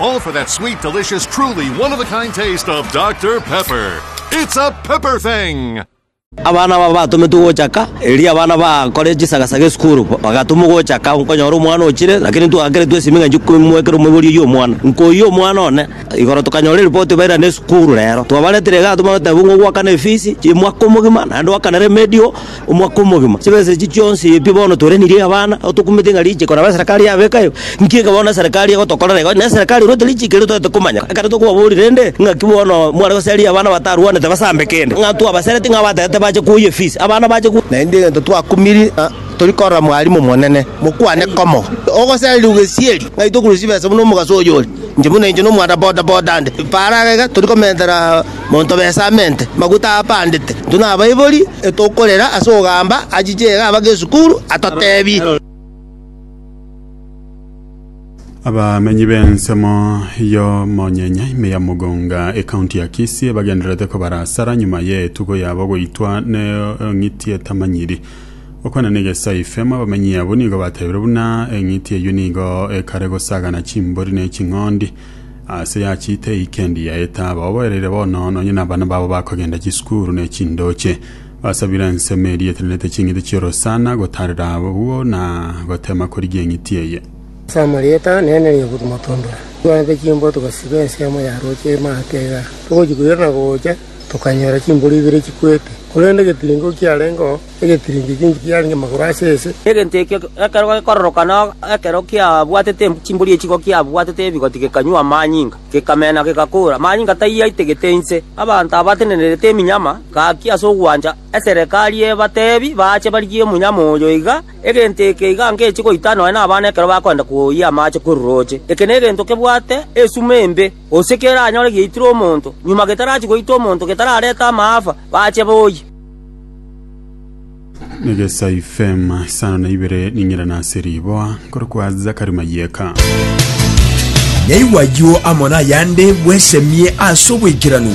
All for that sweet, delicious, truly one of a kind taste of Dr. Pepper. It's a pepper thing! Abana aba batometwe gochaka, erio abana bakore chisagasaga esukuru, bagatumwa gochaka, nkonyora omwana ochire, lakini ntwakeretwe esimi ng'a nchie komwekera omoibori oyio omwana. Nkoyia omwana one, igoro tokanyora eripoti bairane esukuru rero. Twabaretire iga, tobagatebi ng'a ogwakana efisi, chi'emwaka omogima, naende oakana remedio, omwaka omogima. Chibesa echi chionsi pi bono torenirie abana, nabo tokumete ng'a richiiko nabo eserekari yabeka ebe. Nki eke bono eserekari egotokorera igo? Neserekari erwete richiiko erio toete komanya. Ekero tokobaboria rende, ng'aki bono mware goseria abana batarwanete basambe kende, ng'a twabasereti ng'a abatagete bache koyia efisi, abana bache koyia. Naende egento twakumiri ng'a tori korora mwarimu omonene, mokwane komo. Ogosereri ogesieri, ng'ai tokorusia chibesa buna omogaso oyore? Inche buna inche nomwana boda boda nde. Para iga tori komentera. Monto bw'esamente, maguta aapandete, intwe nabaibori, etokorera ase ogamba achiche iga abake esukuru, atoteebie. Abamenyi b'ensemo y'omonyenya ime ya Mugunga, ekaunti ya Kisii, bagendererete kobara asara nyuma y'etugo yabo goitwa n'eng'iti etamanyiri. Gokwana n'egesaife, amo abamenyi abwo nigo bateebire buna eng'iti eyio nigo ekare gosagana chimbori ne ching'ondi. Aase yachiete eikendi ya etaaba, oboereire bono nonye nabana babo bakogenda chisukuru ne chindooche. Basabire ensemo eria etenenete ching'iti chi'orosana, gotaarera abwo na goteema korigia eng'iti eye. Ase amarieta nene nigo timotondora, twanyete chimbogo togasiba ensemo ya rooche emate iga, togochia koirana gocha tokanyora chimboro ibere chikwete, korende getiringo kiarengeo. egetirinki ekiingi kiarenge amagoro ase ense. Egento ekio ekero gekororoka na ekero kiabwatete chimbori echiko kiabwatete ebigoti gekanywa amanyinga, gekamena, gegakora. Amanyinga tayio aitegete inse. Abanto abatenenerete eminyama gaki ase ogwancha eserekari ebatebi baache barigie omonyama oyo iga, egento eke iga ngechie goita nonya nabana ekero bakoenda koyia amache korooche. Eke negento kebwate esuma embe, gose keranyore giaitire omonto, nyuma getarachia goita omonto getararete amaafa, baache boyie. negesa ifema isano na ibere ning'ira nase riboa nkore kwa zakari mayeka Naigwa ayio amo nayande bwesemie ase obwekeranu.